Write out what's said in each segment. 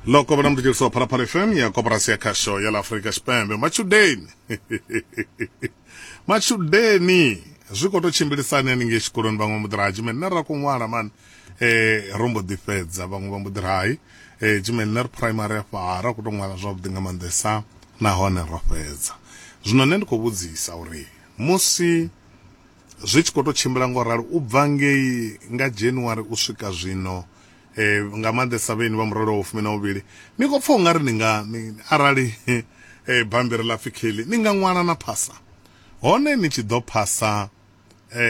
loko vona mutirhisi wa phalaphala fm ya koporasi ya khasho ya la afrika xipembe machudeni machudeni zwi khou tou tshimbilisani haningei tshikoloni vhaṅwe mbo ḓi raha tshimene nṋe ra khou ṅwala mani um ro mbo ḓi fhedza vhaṅwe vha mbo ḓi rahi um tshimene nṋe ri primary afha ra khou tou ṅwala zwavhuḓi nga maanḓesa nahone ro fhedza zwino nṋe ndi khou vhudzisa uri musi Zwi tshi khou tou tshimbila nga u ralo u bva ngei nga January u swika zwino, nga maanḓesa vhaeni vha murole wa vhufumi na vhuvhili, ni khou pfa u nga ri ni nga, arali bammbiri ḽa pfi Kelly, ni nga ṅwala na phasa. Hone ni tshi ḓo phasa,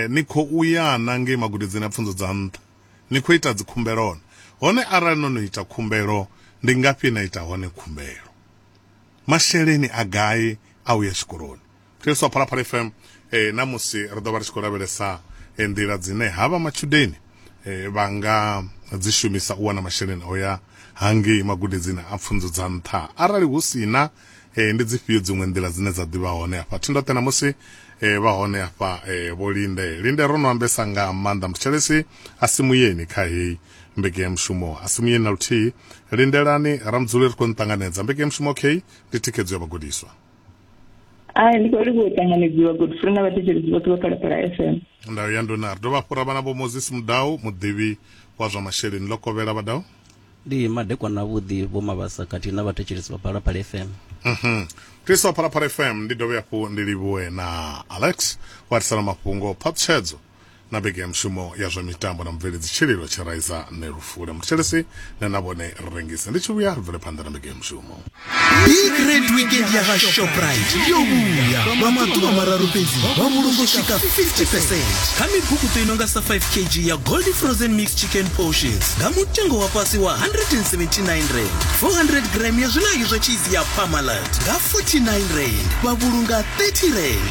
ni khou ya na ngei magudedzini a pfunzo dza nṱha, ni khou ita dzikhumbelo hone. Hone arali no no ita khumbelo, ndi ngafhi he na ita hone khumbelo? Masheleni a gai a u ya tshikoloni? khristo wa phalaphala fm eh, na musi ri ḓo vha ri tshi khou lavhelesa eh, nḓila dzine havha matshudeni eh, vha nga dzi shumisa u wana masheleni o ya hangei magudedzini a pfunzo dza nṱha arali hu si na eh, ndi dzifhio dziṅwe nḓila dzine dza ḓivha hone afha thindoṱe na musi eh, vha hone afha eh, vho linde linde ro no ambesa nga maanḓa mtshelesi a si muyeni kha heyi mbeke ya mushumo a si muyeni na luthihi lindelani ramudzule ri khou nṱanganedza mbeke ya mushumo okay ndi thikhedzo ya vhagudiswa a ndi khou livhuwa u ṱanganedziwa godfrey na vhathetshelesi vhoṱhe vha phalaphala fm ndau ya nduna ri dovha fhura vhana vho moses mudau muḓivhi wa zwa masheleni ḽo kovhela vhadau ndi madekwana avhuḓi vho mavhasa khathihi na vhathetshelesi vha phalaphala fm mhm tisa phalaphala fm ndi dovhe hafhu ndi livhuwe na alex wa tisela mafhungo phaṱhutshedzo na vhege ya mushumo ya zwa mitambo na mubveledzi tshililo tshiraiza ne lufule muthetshelesi ne na vhone rengisi ndi tshi vhuya ri bvele phanḓa na vhege ya mushumo bigred weekend ya ga shoprite yo vhuya lwa maḓuvha mararu fhedzi vha vhulungo swika 50 percent kha mibukuto i nonga sa 5 kg ya gold frozen mix chicken portions nga mutengo wa fhasi wa 179 rand 400 gram ya zwilangi zwa cheese ya pamalat nga 49 rand vha vhulunga 30 rand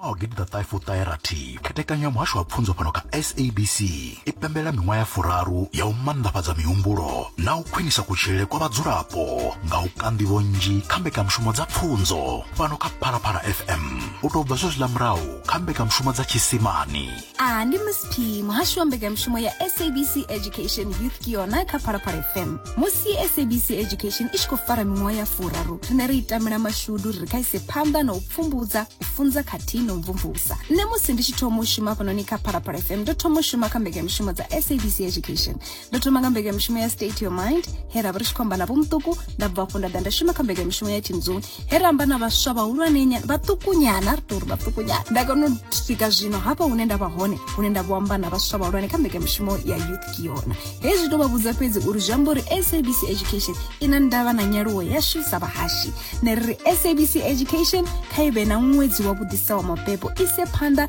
ṅwaha wa gidiḓaṱahefuṱaherathi khethekanyo ya muhasho wa pfunzo fhano kha sabc i pembela miṅwaha ya furaru ya u mannḓafhadza mihumbulo na u khwinisa kutshilele kwa vhadzulapo nga u ka nḓivho nnzhi kha mbekanyamushumo dza pfunzo fhano kha phalaphala fm u tou bva zwezwiḽa murahu kha mbekanyamushumo dza tshisimani a ndi miss p muhashi wa mbekanyamushumo ya sabc education youth ke yona kha phalaphala fm musi sabc education i tshi khou fara miṅwaha ya furaru rine ri itamela mashudu ri khaise phanḓa na u pfumbudza u funza khathihi na u mvumvusa nṋe musi ndi tshi thoma u shuma fhanoni kha phalaphala fm ndo thoma u shuma kha mbekanyamushumo dza sabc education ndo thoma nga mbekanyamushumo ya state your mind he ra vha ri tshi khou amba na vho muṱuku nda bva afho nda ḓa nda shuma kha mbekanyamushumo ya team zone he ra amba na vhaswa vhahulwane vhaṱukunyana ri tou ri vhaṱukunyana nda kona u swika zwino hafha hune nda vha hone hune nda vho amba na vhaswa vhahulwane kha mbekanyamushumo ya youth kiona hezwi tou vha vhudza fhedzi uri zwi amba uri sabc education i na ndavha na nyaluwo yashu sa vhahashi ne ri ri sabc education kha i vhe na ṅwedzi wa vhuḓisa wa mabebo ise phanḓa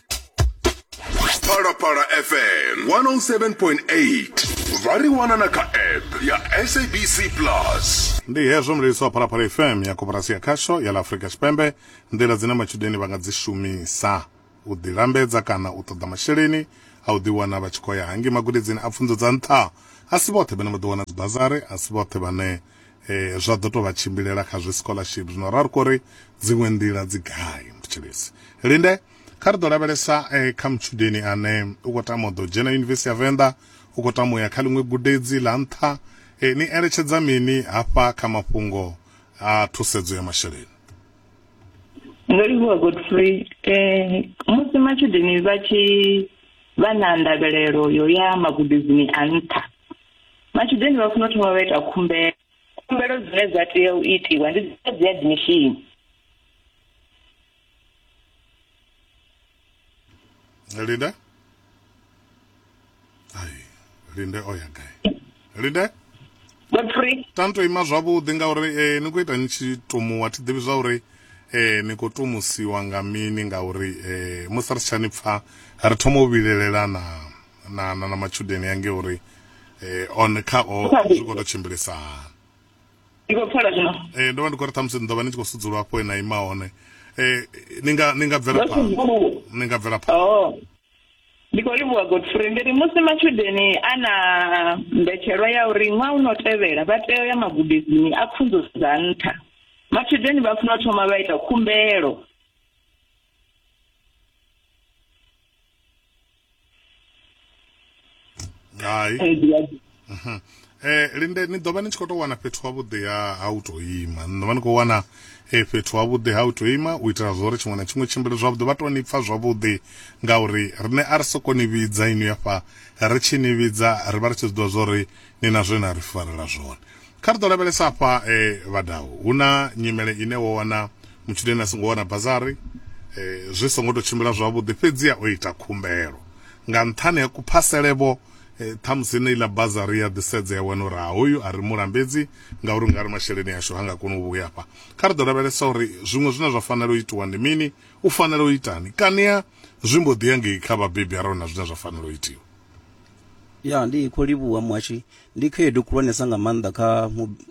phalaphala fm 107.8 vha ri wana na kha app ya sabc plus ndi hezwo mlelisi wa phalaphala fm ya koporasi ya khasho ya ḽa afurika tshipembe nḓila dzine matshudeni vha nga dzi shumisa u ḓilambedza kana u ṱoḓa masheleni a u ḓiwana vha tshi khou ya hangi magudedzini a pfunzo dza nṱha a si vhoṱhe vhane vha ḓo wana dzibazari a si vhoṱhe vhane eh zwa ḓo tovha tshimbilela kha zwi scholarship zwino ra ri kori dziṅwe nḓila dzi gai mutshilisi linde kha ri ḓo lavhelesa eh, kha mutshudeni ane u khou tama u ḓo dzhena yunivesithi ya venḓa u khou tama u ya kha ḽiṅwe gudedzi ḽa nṱha eh, ni eletshedza mini hafha kha mafhungo a thusedzo ya masheleni ndo livhuwa godfrey eh, musi matshudeni vha tshi vha na ndavhelelo yo ya magudedzini a nṱha Matshudeni vha funa u thoma vha ita khumbelo. Khumbelo dzine dza tea u itiwa ndi dza dzi admission. Linde. Ai, Linde o ya gai? Linde. Godfrey. Tani to ima zwavhuḓi ngauri eh, ni khou ita ni tshi tumuwa thi ḓivhi zwa uri eh, ni khou tumusiwa nga mini ngauri eh, musi ri si tsha ni pfa ri thoma u vhilelelana. na na na matshudeni ange uri eh, on kha o zwi khou tou tshimbilisa hani ndi khou pfala zwino eh, ndo vha ndi khou ri ṱhamusi ni ḓo vha ni tshi khou sudzulwa afho e na ima hone eh, ni nga ni nga bvela Vha phanḓa sudzuluwa. ni nga bvela phanḓa Oh. Ndi khou livhuwa Godfrey ndi ri musi matshudeni a na mbetshelwa ya uri ṅwaha u no tevhela vha tea u ya magudedzini a pfunzo dza nṱha. Matshudeni vha funa u thoma vha ita khumbelo hai um linde ni ḓo vha ni tshi khou tou wana fhethu havhuḓi ha ha u tou ima ni ḓo vha ni khou wana eh, fhethu havhuḓi ha u tou ima u itela zwa uri tshiṅwe na tshiṅwe tshimbile zwavhuḓi vha tou ni pfa zwavhuḓi ngauri riṋe a ri soko ni vhidza inwi afha ri tshi ni vhidza ri vha ri tshi zwi ḓivha zwa uri ni na zwe na ri farela zwone Kha ri ḓo lavhelesa afha e vha daho. Hu na nyimele ine wo wana mutshudeni a songo wana bazari zwi songo tou tshimbila zwavhuḓi, fhedziha o ita khumbelo nga nṱhani ha kuphasele-vho, ṱhamusi heneiḽa bazari ya ḓisedza ya wana uri ha hoyu a ri mu lambedzi ngauri ungari masheleni ashu ha nga koni u vhuya afha. Kha ri ḓo lavhelesa uri zwiṅwe zwine zwa fanela u itiwa ndi mini, u fanela u itani, kaniha zwi mbo ḓi ya ngei kha vhabebi arali hu na zwine zwa fanela u itiwa. Ya, ndi khou livhuha muhashi Ndi khaedu khulwanesa nga maanḓa kha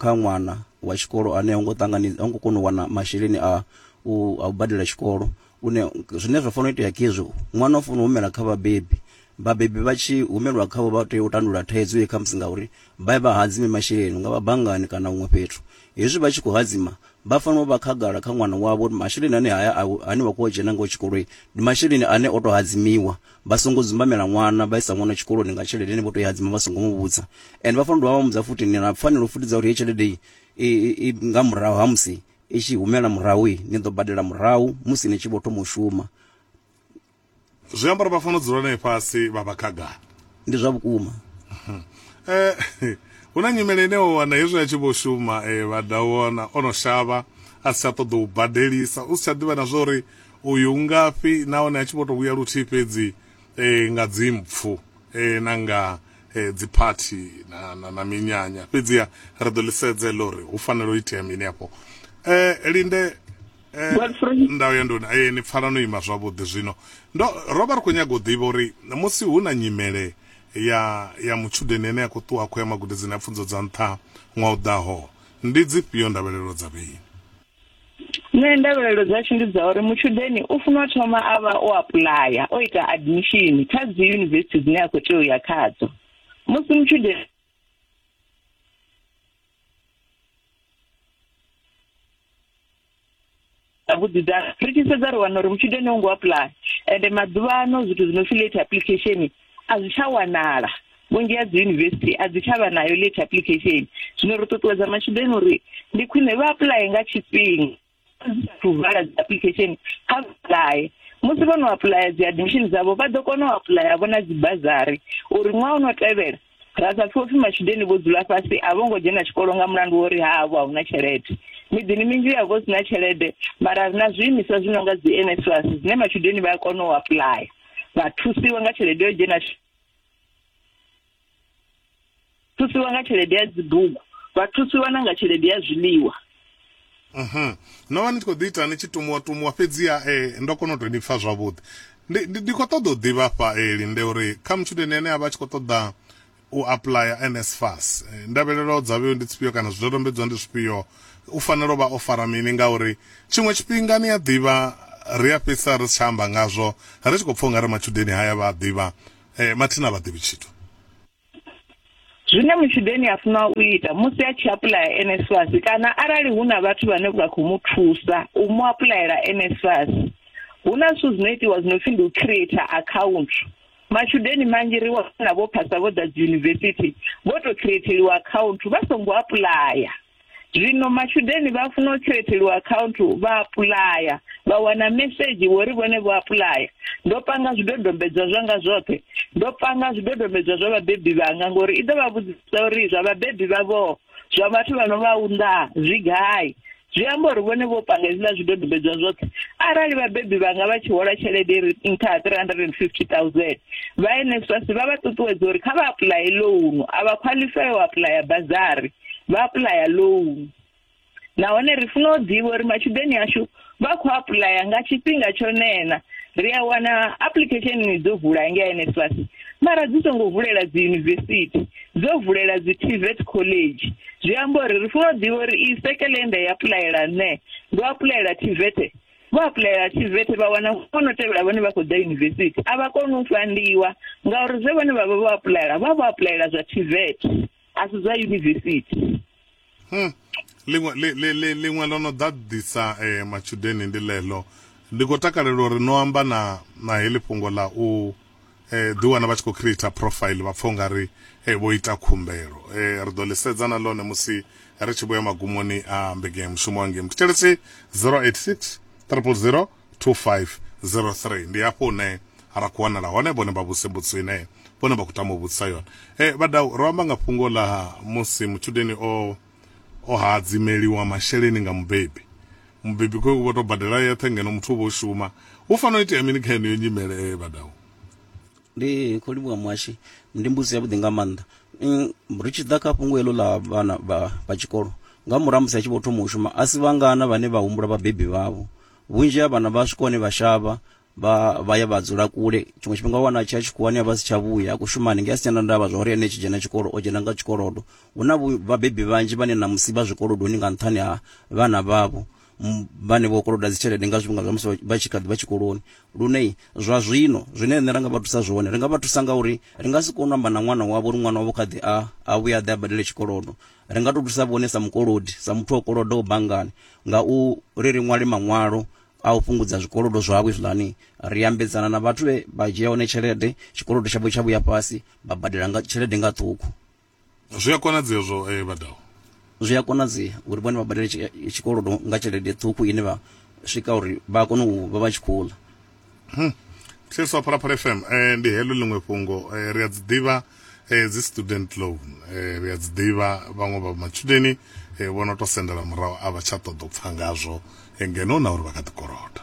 kha ṅwana wa tshikolo ane ha ngo ṱangana ha ngo kona u wana masheleni a u a u badela tshikolo une zwine zwa fanela u itea khezwi ṅwana u fanela u humela kha vhabebi vhabebi vha tshi humelwa khavho vha tea u tandulula thaidzo ye khamusi ngauri vha vha hadzime masheleni nga vha banngani kana huṅwe fhethu hezwi vha tshi khou hadzima vha fanela u vha khagala kha ṅwana wavho uri masheleni ane haya ane wa khou dzhena ngao tshikoloi ndi masheleni ane o to hadzimiwa Vha songo dzumbamela ṅwana, vha isa ṅwana tshikoloni nga tshelede ine vho tou i hadzima vha songo mu vhudza. Ende vha fanela u dovha vha mu vhudza futhi, ni na pfanelo futhi dza uri heyi tshelede i, i, i, i nga murahu ha musi i tshi humela murahu, i, ni ḓo badela murahu musi ni tshi vho thoma u shuma. Zwi amba uri vha fanela u dzula nae fhasi vha vha khagala. Ndi zwa vhukuma. E, hu na nyimele ine wa wana hezwi a tshi vho shuma, e, vha da wana o no shavha, a si tsha ṱoḓa u badelisa, u si tsha ḓivha na zwa uri Uyu u ngafhi nahone a tshi vho tou vhuya luthihi fhedzi eh, nga dzimpfu eh, na nga eh, dziphathi na, na, na minyanya fhedziha ri ḓo ḽi sedza heḽo uri hu fanela u itea mini afho eh, linde eh, Godfrey. ndau ya nduni eh, ni pfala no ima zwavhuḓi zwino ndo ro vha ri khou nyaga u ḓivha uri musi hu na nyimele ya ya mutshudeni ane a khou ṱuwa a khou ya magudedzini a pfunzo dza nṱha ṅwaha u ḓaho ndi dzifhio ndavhelelo dza vheini Nṋe ndavhelelo dzashu ndi dza uri mutshudeni u funwa thoma a vha o apuḽaya o ita admission kha dzi yunivesithi dzine a khou tea u ya khadzo musi mutshudeni vhuḓidza ri tshi sedza ri wana uri mutshudeni u ngo apuḽaya ende maḓuvha ano zwithu zwi no pfhi late application a zwi tsha wanala vhunzhi ha dzi yunivesithi a dzi tsha vha nayo late application zwino ri ṱuṱuwedza matshudeni uri ndi khwine vha apply nga tshifhinga to vala dzi application kha apply musi vho no apply dzi admission dzavho vha ḓo kona u apply vho na dzi bazari uri ṅwaha u no tevhela Ra sa pfe u pfi matshudeni vho dzula fhasi a vho ngo dzhena tshikolo nga mulandu wa uri havho a hu na tshelede. Miḓini minzhi hu a vha hu si na tshelede, mara ri na zwiimiswa zwi no nga dzi NSFAS zwine matshudeni vha a kona u apuḽaya vha thusiwa nga tshelede yo dzhena thusiwa nga tshelede ya dzibugu, vha thusiwa na nga tshelede ya zwiḽiwa. Mhm. No vha ni tshi khou ḓi ita ni tshi tumuwa tumuwa fhedziha eh, ndo kona u tou ni pfa zwavhuḓi. Ndi, ndi, ndi khou ṱoḓa u ḓivha hafha eh, Linde uri kha mutshudeni ane a vha a tshi khou ṱoḓa u apuḽaya NSFAS eh, ndavhelelo dza vheo ndi dzifhio kana zwidodombedzwa ndi zwifhio u fanela u vha o fara mini ngauri tshiṅwe tshifhinga ni a ḓivha ri a fhedzisa ri si tsha amba ngazwo ri tshi khou pfa u nga ri matshudeni haya vha a ḓivha eh, mathina a vha ḓivhi tshithu. Zwine mutshudeni a funa u ita musi a tshi apuḽaya NSFAS kana arali hu na vhathu vhane vha khou mu thusa u mu apuḽayela NSFAS, hu na zwithu zwi no itiwa zwi no pfi ndi u creator account. Matshudeni manzhi ri wana vho phasa vho ḓa dzi yunivesithi vho to creatheliwa account vha songo apuḽaya. Zwino matshudeni vha funa u khireteliwa akhaunthu vha apuḽaya, vha wana mesedzhi wo ri vhone vho apuḽaya. Ndo panga zwidodombedzwa zwanga zwoṱhe, ndo panga zwidodombedzwa zwa vhabebi vhanga ngori i ḓo vha vhudzisa uri zwa vhabebi vhavho, zwa vhathu vha no vha unḓaa zwi gai. Zwi amba uri vhone vho panga hezwiḽa zwidodombedzwa zwoṱhe. Arali vhabebi vhanga vha tshi hola tshelede i re nṱha ha 350,000, vha NSFAS vha vha ṱuṱuwedza uri kha vha apuḽaye ḽounu, a vha khwaḽifaya u apuḽaya bazari. vha apuḽaya loan nahone ri funa u ḓivha uri matshudeni ashu vha khou apuḽaya nga tshifhinga tsho nena ri a wana application ni dzo vula ngei NSFAS mara dzi songo vulela dzi university dzo vulela dzi TVET college zwi amba uri ri funa u ḓivha uri i sekele nda ya apuḽayela nṋe ndo apuḽayela TVET vho apuḽayela TVET vha wana vhono tevhela vhone vha khou ḓa university a vha koni u fandiwa ngauri zwe vhone vha vha vho apuḽayela vha vho apuḽayela zwa TVET A si zwa yunivesithi. Hum. Ḽiṅwe, ḽi, ḽi, ḽi, ḽiṅwe ḽo no ḓaḓisa e, matshudeni ndi ḽeḽo. Ndi khou takalela uri no amba na, na heḽi fhungo ḽa u e, ḓiwana vha tshi khou creator profile vha pfa u nga ri e, vho ita khumbelo. E, ri ḓo ḽi sedza na ḽone musi ri tshi vhuya magumoni a Mbekanyamushumo Hangei Mthetshelesi 086 000. 2503 ndi hafho hune ra khou wanala hone vhone vha vhuse mbudziso ine vhone vha khou tama u vhudzisa yone e, vhadau ro amba nga fhungo ḽa musi mutshudeni o o hadzimeliwa masheleni nga mubebi mubebi khou vho tou badela yeṱhe ngeno muthu u vho shuma hu fanela u itea mini kha yeneyo nyimele vhadau ndi khou livhuwa muhashi ndi mbudziso yavhuḓi nga maanḓa Mm, ri tshi ḓa kha fhungo heḽo ḽa vhana vha vha tshikolo nga murahu ha musi a tshi vho thoma u shuma a si vhangana vhane vha humbula vhabebi vhavho vhunzhi ha vhana vha swika hone vha shavha vha vha ya vha dzula kule tshiṅwe tshifhinga wa wana a tshi ya tshikhuwani a vha a si tsha vhuya a khou shuma hanengei a si tshena ndavha zwa uri ene tshi dzhena tshikolo o dzhena nga tshikolodo hu na vhu- vhabebi vhanzhi vhane namusi vha zwikolodoni nga nṱhani ha vhana vhavho vhane vho koloda dzitshelede nga zwifhinga zwa musi vha tshi kha ḓi vha tshikoloni lune zwa zwino zwine riṋe ra nga vha thusa zwone ri nga vha thusa nga uri ri nga si kone u amba na ṅwana wavho uri ṅwana wavho kha ḓi a a vhuya a ḓe a badele tshikolodo ri nga tou thusa vhone sa mukolodi sa muthu o kolodaho banngani nga u ri ri ṅwale maṅwalo a u fhungudza zwikolodo zwavho izwiḽani ri ambedzana na vhathu vhe vha dzhia hone tshelede tshikolodo tshavho tsha vhuya fhasi vha badela nga tshelede nga ṱhukhu Zwi a konadzea zwo eh, vhadaho. Zwi a konadzea uri vhone vha badele tshikolodo nga tshelede ṱhukhu ine vha swika uri vha kone u vha vha tshi khou ḽa. Hmm. Thetshelesa wa Phalaphala FM, eh, ndi heḽo ḽiṅwe fhungo. Eh, ri a dzi ḓivha eh, dzi student loan. Eh, ri a dzi ḓivha vhaṅwe vha matshudeni eh, vho no to sendela murahu a vha tsha ṱoḓa u pfa ngazwo eh, ngeno na uri vha kha ḓi koloda.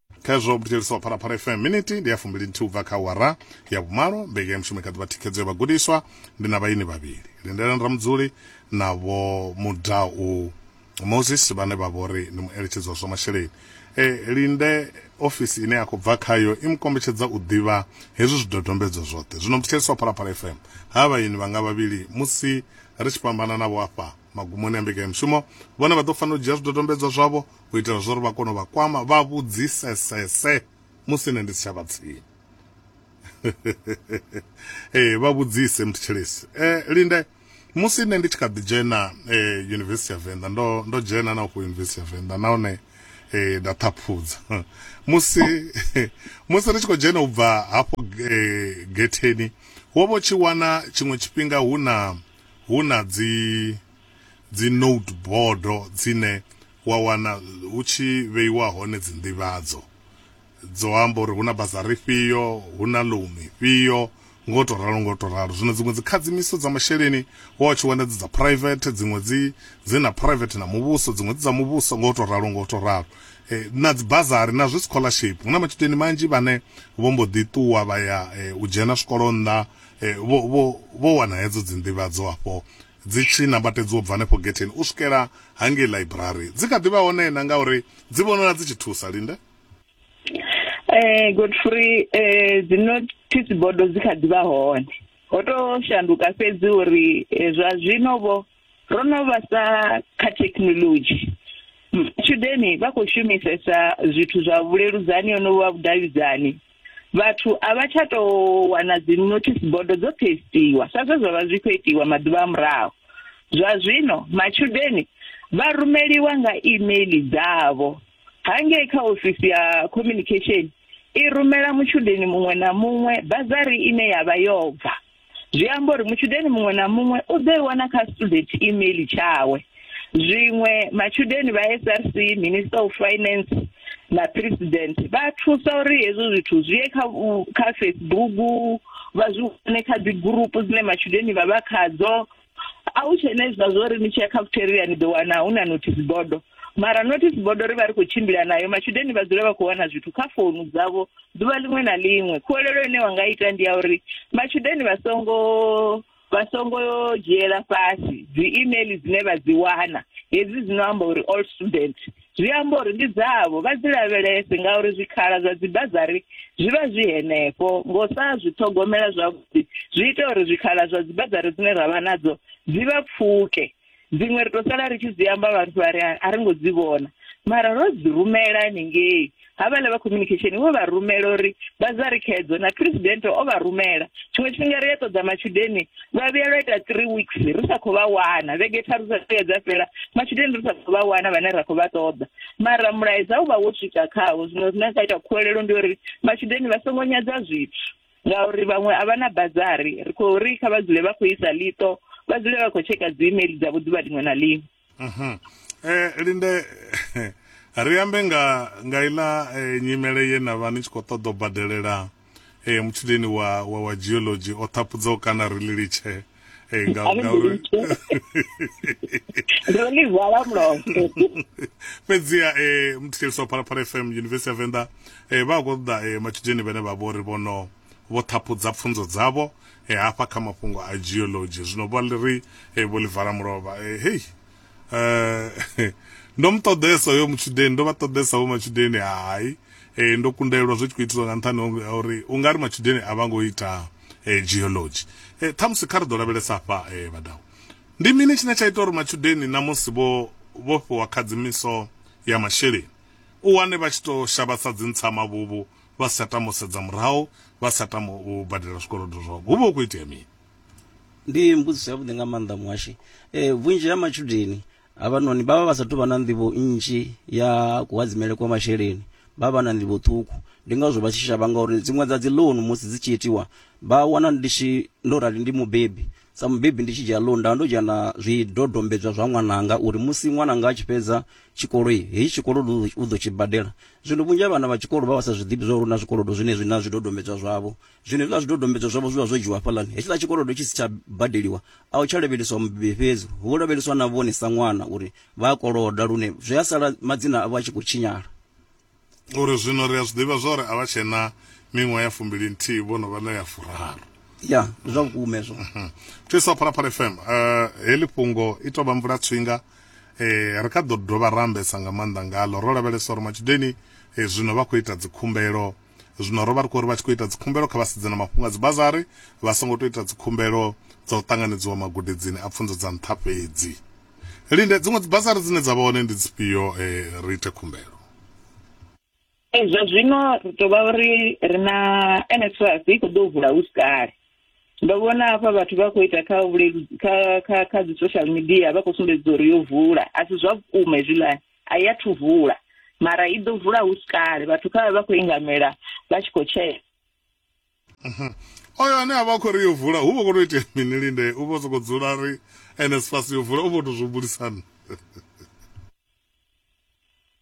khezwo vhuthetshelisi wa phalaphala fm miniti ndi ya fumbili nthihi ubva kha wara ya vhumalo mbeke ya mushumo kha ḓivha thikhedzo ya vhagudiswa ndi na vhaini vhavhili lindelani ramudzuli na vho mudau moses vhane vha vhori ndi mueletshedzi wa zwa masheleni e, linde ofisi ine ya khou bva khayo i mu kombetshedza u ḓivha hezwi zwidodombedzwa zwoṱhe zwino muthetshelisi wa phalaphala fm ha vhaini vhanga vhavhili musi ri tshi fhambana navho afha magumoni a mbekanya mushumo vhone vha ḓo fanela u dzhia zwidodombedzwa zwavho u itela zwa uri vha kone u vha kwama vha vhudzisesese musi nṋe ndi si tsha vha tsini. Ee, vha vhudzise muthetshelesi. Eh, Linde, musi nṋe ndi tshi kha ḓi dzhena eh, Yunivesithi ya Venḓa, ndo, ndo dzhena na ufho Yunivesithi ya Venḓa nahone eh, nda ṱhaphudza. musi, musi ri tshi khou dzhena u bva hafho eh, getheni, wo vha u tshi wana tshiṅwe tshifhinga hu na, hu na dzi, dzi note bodo dzine wa wana hu tshi vheiwa hone dzi nḓivhadzo dzo amba uri hu na bazari ifhio, hu na loan ifhio nga u to ralo nga u to ralo. Zwino dziṅwe dzi khadzimiso dza masheleni wa u tshi wana dzi dza private, dziṅwe dzi dzi na private na muvhuso, dziṅwe dzi dza muvhuso nga u to ralo nga u to ralo. Na dzi bazari na zwi scholarship hu na matshudeni manzhi vhane vho mbo ḓi ṱuwa vha ya u dzhena zwikolo nnḓa vho vho vho wana hedzo dzi nḓivhadzo afho Dzi tshi nambatedzwa u bva henefho getheni u swikela hangei ḽaiburari. Dzi kha ḓi vha hone na ngauri dzi vhonala dzi tshi thusa. Linde. Ee, Godfrey, dzi nothisi bodo dzi kha ḓi vha hone. Ho tou shanduka fhedzi uri zwa zwino-vho ro no vhasa kha thekhinoḽodzhi. Matshudeni vha khou shumisesa zwithu zwa vhuleludzani honovhu ha vhudavhidzani. vhathu a vha tsha tou wana dzi notice bodo dzo pastiwa sa zwe zwa vha zwi khou itiwa maḓuvha a murahu zwa zwino matshudeni vha rumeliwa nga email dzavho hangei kha ofisi ya communication i rumela mutshudeni muṅwe na muṅwe bazari ine yavha yo bva Zwi amba uri mutshudeni muṅwe na muṅwe u ḓo i wana kha student email tshawe. Zwiṅwe matshudeni vha SRC, Minister of Finance na President vha thusa uri hezwo zwithu zwi ye kha kha Facebook vha zwi wane kha dzi gurupu dzine matshudeni vha vha khadzo. a hu tshena hezwiḽa zwo ri ni tshi ya cafeteria ni ḓo wana hu na notice bodo mara notice bodo ri vha ri khou tshimbila nayo matshudeni vha dzule vha khou wana zwithu kha founu dzavho ḓuvha ḽiṅwe na ḽiṅwe khuwelelo ine wa nga ita ndi ya uri matshudeni vha songo vha songo dzhiela fhasi dzi email dzine vha dzi wana hedzi dzi no amba uri all student zwi amba uri ndi dzavho, vha dzi lavhelese ngauri zwikhala zwa dzibazari zwi vha zwi henefho. Nga u sa zwi ṱhogomela zwavhuḓi, zwi ita uri zwikhala zwa dzibazari dzine ra vha nadzo dzi vha pfuke. Dziṅwe ri tou sala ri tshi dzi amba vhathu vha ri a ri ngo dzi vhona mara ro dzi rumela hanengei. Havhaḽa vha khominikhesheni vho vha rumela uri vha zari khedzo na phresidennde o vha rumela. Tshiṅwe tshifhinga ri a ṱoḓa matshudeni lwa vhuya lwa ita three weeks ri sa khou vha wana, vhege tharu dza vhuya dza fhela matshudeni ri sa khou vha wana vhane ra khou vha ṱoḓa. Mara mulaedza u vha wo swika khavho, zwino zwine ra ita khuwelelo ndi uri matshudeni vha songo nyadza zwithu ngauri vhaṅwe a vha na bazari, ri khou ri kha vha dzule vha khou isa ḽiṱo, vha dzule vha khou tsheka dzi email dzavho ḓuvha ḽiṅwe na ḽiṅwe. eh linde ri ambe nga nga ila eh, nyimele ye na vha ni tshi khou ṱoḓa u badelela eh mutshideni wa wa, wa geology o ṱhapudza u kana ri lilitshe eh nga A ri nga uri ndo ḽi vala mulomo fhedziha eh muthiliswa phalaphala fm university ya venḓa eh vha a khou ṱoḓa eh matshideni vhane vha vhori vhono Vho ṱhaphudza pfunzo dzavho hafha kha mafhungo a geology. Zwino vho ri vho ḽi vala mulovha. Hei! Ndo mu ṱoḓesa hoyo mutshudeni, ndo vha ṱoḓesa vho matshudeni, hai. Ndo kundelwa zwi tshi khou itiswa nga nṱhani ha uri u nga ri matshudeni a vha ngo ita geology. Ṱhamusi kha ri ḓo lavhelesa hafha vhadau. Ndi mini tshine tsha ita uri matshudeni na musi vho vhofhiwa khadzimiso ya masheleni u wane vha tshi tou shavha sa dzintsama-vhuvhu? vha sa tama u sedza murahu vha sa tama u badela zwikolodo zwavho hu vha hu khou itea mini ndi mbudziso yavhuḓi nga maanḓa muhashi eh, vhunzhi ha matshudeni havhanoni vha vha vha sa tou vha na nḓivho nnzhi ya kuhadzimele kwa masheleni vha vha na nḓivho ṱhukhu ndi ngazwo vha tshi shavha ngauri dziṅwe dza dzi loan musi dzi tshi itiwa vha wana ndi tshi ndo rali ndi mubebi sa mubebi ndi tshi dzhia loan nda ndo dzhia na zwidodombedzwa zwa ṅwananga uri musi ṅwananga a tshi fhedza tshikolo heyi tshikolo u ḓo tshi badela Zwino vhunzhi ha vhana vha tshikolo vha vha sa zwi ḓivhi zwauri hu na zwikolodo zwenezwi na zwidodombedzwa zwavho. Zwino hezwiḽa zwidodombedzwa zwavho zwi vha zwo dzhiiwa hafhaḽani. Hetshiḽa tshikolodo tshi si tsha badeliwa, a hu tsha lavheleswa mubebi fhedzi, hu vho lavheleswa na vhone sa ṅwana uri vha a koloda lune zwi a sala madzina avho a tshi khou tshinyala. Ngauri zwino ri a zwi ḓivha zwauri a vha tshe na miṅwaha ya fumbili-nthihi, vho no vha na ya furaru. Ya, ndi zwa vhukuma hezwo. Thusa Phalaphala FM. Heḽi fhungo i tou vha mvula-tswinga. Eh, ri kha ḓo dovha ra ambesa nga maanḓa ngaḽo. Ro lavhelesa uri matshudeni eh, zwino vha khou ita dzikhumbelo. Zwino ro vha ri khou ri vha tshi khou ita dzikhumbelo kha vha sedze na mafhungo a dzibazari, vha songo tou ita dzikhumbelo dza u ṱanganedziwa magudedzini a pfunzo dza nṱha fhedzi. Linde, dziṅwe dzibazari dzine dza vha hone ndi dzifhio eh, ri ite khumbelo? Ee, zwa zwino ri tou vha uri ri na NSFAS i khou ḓo vula hu si kale ndo vhona hafha vhathu vha khou ita kha vhuleludzi kha kha kha dzi social media vha khou sumbedza uri yo vula a si zwa vhukuma hezwiḽani a i athu vula mara i ḓo vula hu si kale vhathu kha vha vha khou ingamela vha tshi khou tshea oyo ane a vha khou ri yo vula hu vha khou tou itea mini linde u vha sokou dzula ri NSFAS yo vula u vha tou zwi humbulisa nṋe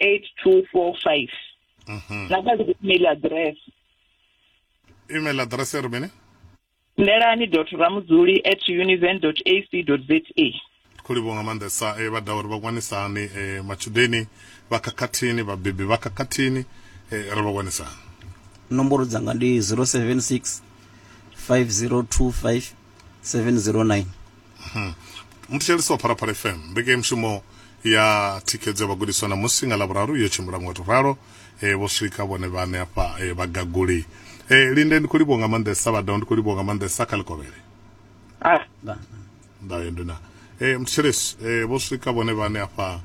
8245 mhm. na kha email address email address ri mini ndelani dot ramudzuli at univen dot ac dot za khou livhuwa nga maanḓesa e, vha ḓa uri vha wanisa hani e, matshudeni vha khakhathini vhabebi vha khakhathini e, ri vha wanisa hani nomboro dzanga ndi 076 5025 709 hmm. muthetshelesi wa pharaphala fm mbekemushumo ya thikhedzo ya vhagudiswa na musi nga lavhuraru yo tshimbila ngo to ralo eh, vho swika vhone vhane hafha eh, vhagaguli eh, linde ndi khou livhuwa nga maanḓesa vhadao ndi khou livhuwa nga maanḓesa kha ḽikovhele ah. ndayo ndina eh, muthetshelesi eh, vho swika vhone vhane hafha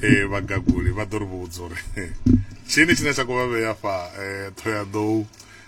eh, vhagaguli vha ḓo ri vhudza uri tshini tshine tsha khou vha vhea hafha eh, ṱhoyaḓou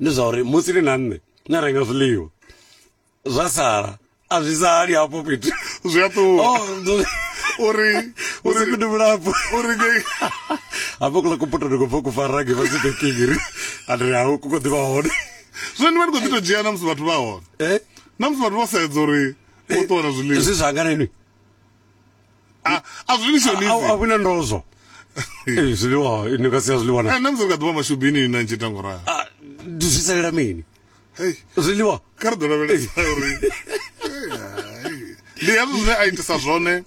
Ndi zwa uri musi ni na nṋe ni a renga zwiḽiwa zwa sala a zwi sali hafho fhethu zwi a ṱuwa oh, uri uri fhethu vhulapfu uri hafho kula kuputo ndi khou bva ku fara nge vhasi bekingiri and ri hau ku khou ḓivha hone zwino ni vha ni khou ḓi tou dzhia na musi vhathu vha hone eh? na musi vhathu vho sedza uri vho ṱuwa na zwiḽiwa zwi zwanganenwi a a zwi ni shonisi a vhina ndozwo ee zwiḽiwa ni nga sia zwiḽiwa na na musi nga ḓuvha mashubini na ntshe tango ra a ndi zwi salela mini hey zwiḽiwa kha ri ḓo lavhelesa uri ndi hezwo zwine a itisa zwone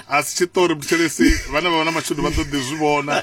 a si tshiṱori buthelesi vhane vha vha na mashudu vha ḓo ḓi zwi vhona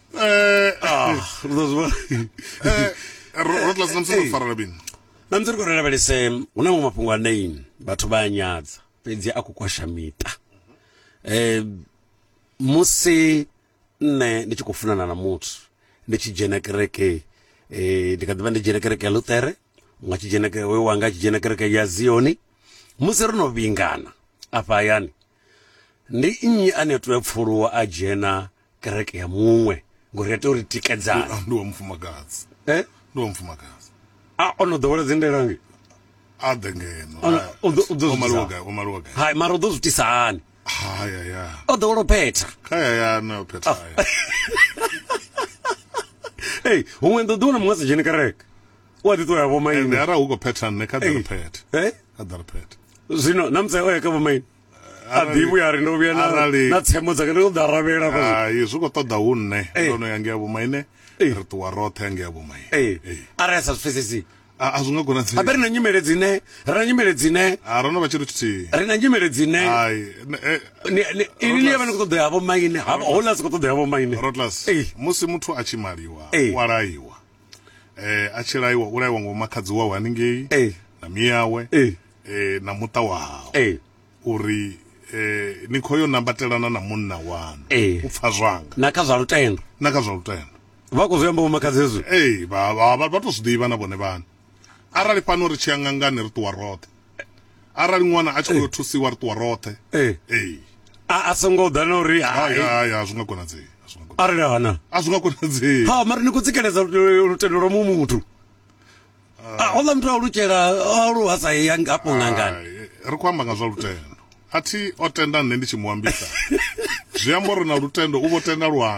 Eh, ah, ri ḓo zwi vhona. Eh, ro ro tlasi na musi ro farela bini na musi ri khou lavhelese hu na maṅwe mafhungo ane vhathu vha a nyadza fhedzi a khou kwasha miṱa um musi nṋe ndi tshi khou funana na muthu ndi tshi dzhena kereke um ndi kha ḓivha ndi dzhena kereke ya luṱere nga tshi dzhena ke- hoyo wanga a tshi dzhena kereke ya zioni musi ro no vhingana afha hayani ndi nnyi ane a tea u pfuluwa a dzhena kereke ya muṅwe ngori ya tea uri tikedzana ndi wa mufumakadzi eh ndi wa mufumakadzi a o no ḓowela dzi ndelange a ḓe ngeno o maliwa gai o maliwa gai hai mara u ḓo zwi tisa hani hai ya ya o ḓowela u phetha kha ya ya na u phetha ya hey huṅwe ndo ḓi wana muṅwe a sa dzheni kereke u a ḓi ṱoya vho maine ara hu khou phetha nṋe kha ḓa ri phethe eh kha ḓa ri phethe zwino na mutsae o ya kha vho maine a ḓivhi ya ri ndo vhuya na tsemo dzake ndo ḓa ravhela hai zwi khou ṱoḓa hu nṋe eh. ndo no ya ngea vhomaine eh. ri ṱuwa roṱhe ya ngea vhomaine eh. arali a sa zwi pfesesi a zwi nga konadzei abe ri na nyimele dzine ri na nyimele dzine a ro no vha tshithu tshithihi ri na nyimele dzine ini ni ya vha ni khou ṱoḓa ya vhomaine houḽa si khou ṱoḓa ya vhomaine rotlas musi muthu a tshi maliwa wa laiwa um a tshi laiwa u laiwa ngo makhadzi wawe haningei na miyawe eh, na muṱa wa hao eh. uri eh, ni khou yo nambatelana na munna wanu eh. u pfa zwanga na kha zwa lutendo na kha zwa lutendo vha khou zwi amba vhomakhadzi hezwi ee vha tou zwi ḓivha na vhone vhane arali fhano ri tshi ya ngangani ri ṱuwa roṱhe arali ṅwana a tshi khou yo thusiwa ri ṱuwa roṱhe ee a songo ḓa na uri haya zwi nga konadzei arali hana a zwi nga konadzei ha mara ni khou tsikeledza lutendo lwa muṅwe muthu a houḽa muthu a lutshela a lu hasa ya hafho ngangani ri khou amba nga zwa lutendo a thi o tenda nṋe ndi tshi mu ambisa zwi amba uri na lutendo u vho tenda lwanga